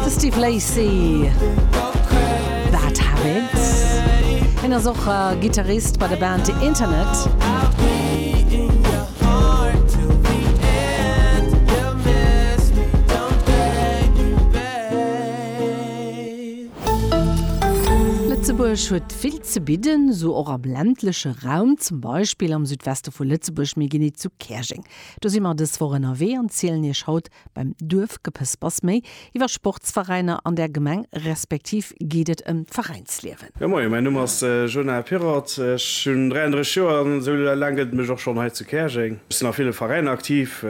De Steve Lacy, Bad Habits. Hien ass och Gittarist bei der Band The Internet. Lëtzebuerg huet vill ze bidden, esou och am ländleche Raum, zum Beispill am Südweste vu Lëtzebuerg. Mir ginn hizu Käerjeng. Do si mer dës Woch ënnerwee an zielen Iech haut Beim Duerfgepëspers méi iwwer Sportsveräiner an der Gemeng respektiv geet et ëm d'Veräinsliewen. Jo moien, mäin Numm ass Jonah Pirrott, ech hunn 33 Joer an esou laang gëtt et mech och schonn hei zu Käerjeng. Ech sinn a ville Veräiner aktiv,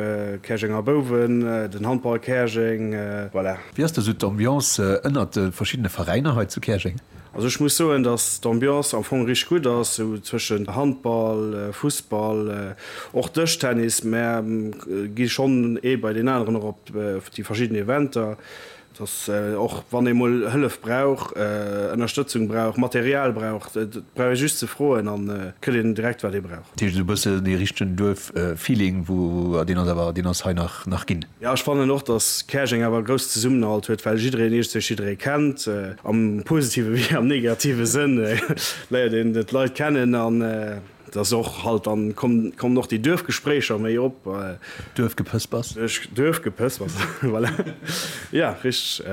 Käerjenger Bouwen, den Handball Käerjeng, voilà. Wéi ass do sou d'Ambiance ënnert de verschiddene Veräiner hei zu Käerjeng? Also ech muss soen, dass d'Ambiance am Fong richteg gutt ass, sou zwëschen Handball, Fussball, och Dëschtennis, mä gi schonn ee bei deen aneren och op déi verschidden Eventer, dass och wann ee mol Hëllef brauch, Ënnerstëtzung brauch, Material brauch, et brauch ee just ze froen, an et kritt een direkt wat ee brauch. Dat heescht esou bëssen dee richtegen Duerf-Feeling, deen ass awer, deen ass hei nach ginn. Jo, ech fannen och, datt Käerjeng awer e grousse Zesummenhalt huet, well jiddereen eescht sech jidderee kennt, am positive wéi am negative Sënn léiert een d'Leit kennen an et ass och halt, dann kommen och déi Duerfgespréicher méi op. D'Duerfgepëspers. D'Duerfgepëspers, voilà, jo, richteg.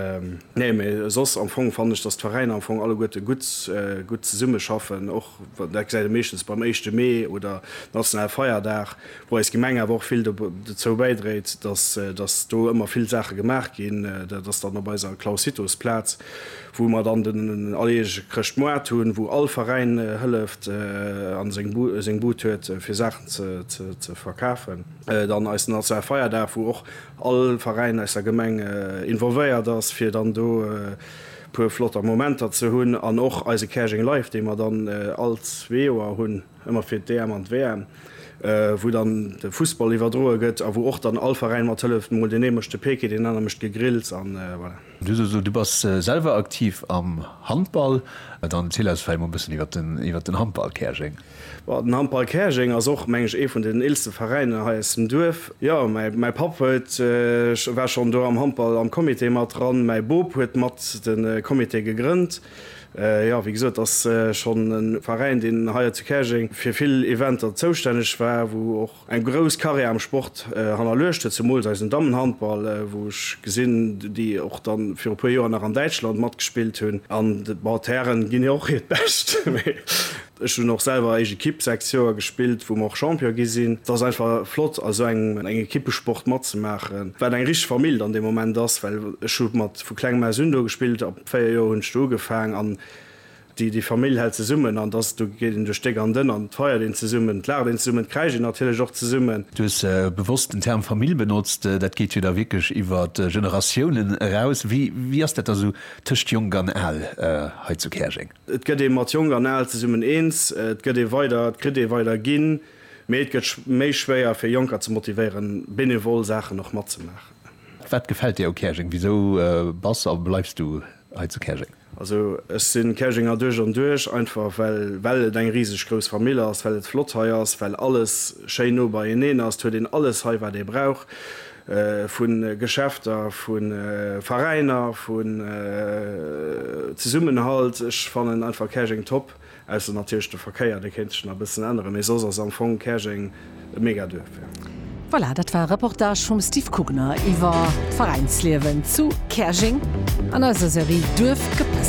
Nee, mee soss am Fong fannen ech, datt d'Veräiner am Fong alleguerte gutt zesummeschaffen. Dat gesäit ee meeschtens beim éischte Mee oder nationale Feierdag, wou eis Gemeng awer och vill dozou bäidréit, datt do ëmmer vill Saache gemaach ginn. Dat ass dann op eiser Clausitus-Plaz, wou mer dann den alleguerege Chrëschtmoart hunn, wou all Veräin hëlleft a seng Bud huet, fir Saachen ze verkafen. Dann eisen nationale Feierdag, wou och all Veräin aus der Gemeng involvéiert ass, fir dann do. puer flotter Momenter ze hunn an och eise Käerjeng Live, dee mer dann all zwee Joer hunn, ëmmer fir d'EM an d'WM, wou dann de Fussball iwwerdroe gëtt a wou och dann all Veräin mat hëlleft, mol deen ee mécht de Peeke, deen aner mécht d'Gegrills an voilà. Du hues gesot, du bass selwer aktiv am Handball, dann erziel eis vläicht mol e bëssen iwwert den Handball Käerjeng. Bon, den Handball Käerjeng ass och, mengen ech, ee vun den eelste Veräiner hei aus dem Duerf. Jo, mäi Papp huet, war schonn do am Handball am Comité mat dran. Mäi Bop huet mat de Comité gegrënnt. Jo, wéi gesot, ass schonn e Veräin, deen hei zu Käerjeng fir vill Eventer zoustänneg war, wou och. Eng grouss Carrière am Sport hannerluecht huet zemools eisen Dammenhandball, wou ech gesinn, déi och dann viru puer Joer nach an Däitschland matgespillt hunn. An bon, d'Hären ginn jo och hiert Bescht, mee ech hunn och selwer eischt Ekipp sechs Joer gespillt, wou mer och Champion gi sinn. Et ass einfach flott a sou engem Ekippesport matzemaachen, wat eng richteg Famill dann dee Moment ass, well ech hu mat vu klengem aus un do gespillt, ab véier Joer hunn ech do ugefaang an Déi Famill hält zesummen an dass, do geet een duerch déck an dënn an et feiert een zesummen, et laacht een zesummen, et kräischt een natierlech och zesummen. Du hues bewosst den Term Famill benotzt. Dat geet jo da wierklech iwwer Generatiounen eraus. Wéi ass dat da sou tëscht Jonk an Al hei zu Käerjeng? Et gëtt ee mat Jonk an Al zesummen eens, et gëtt ee weider, et kritt ee weider ginn, mee et gëtt méi schwéier fir Jonker ze motivéieren, benevol Saachen och matzemaachen. Wat gefält dir u Käerjeng? Wisou bass a bleifs du hei zu Käerjeng? Also ech si Käerjenger duerch an duerch, einfach well well et eng riseg grouss Famill ass, well et flott hei ass, well alles schéin no beieneen ass. Et huet een alles hei wat ee brauch, vu Geschäfter, vu Veräiner, vun Zesummenhalt. Ech fannen einfach Käerjeng top. Ausser natierlech de Verkéier, dee kéint sech nach e bëssen änneren, mee soss ass am Fong Käerjeng e Megaduerf, jo. Voilà, dat war e Reportage vum Steve Kugner iwwer d'Veräinsliewen zu Käerjeng an eiser Serie Duerfgepëspel.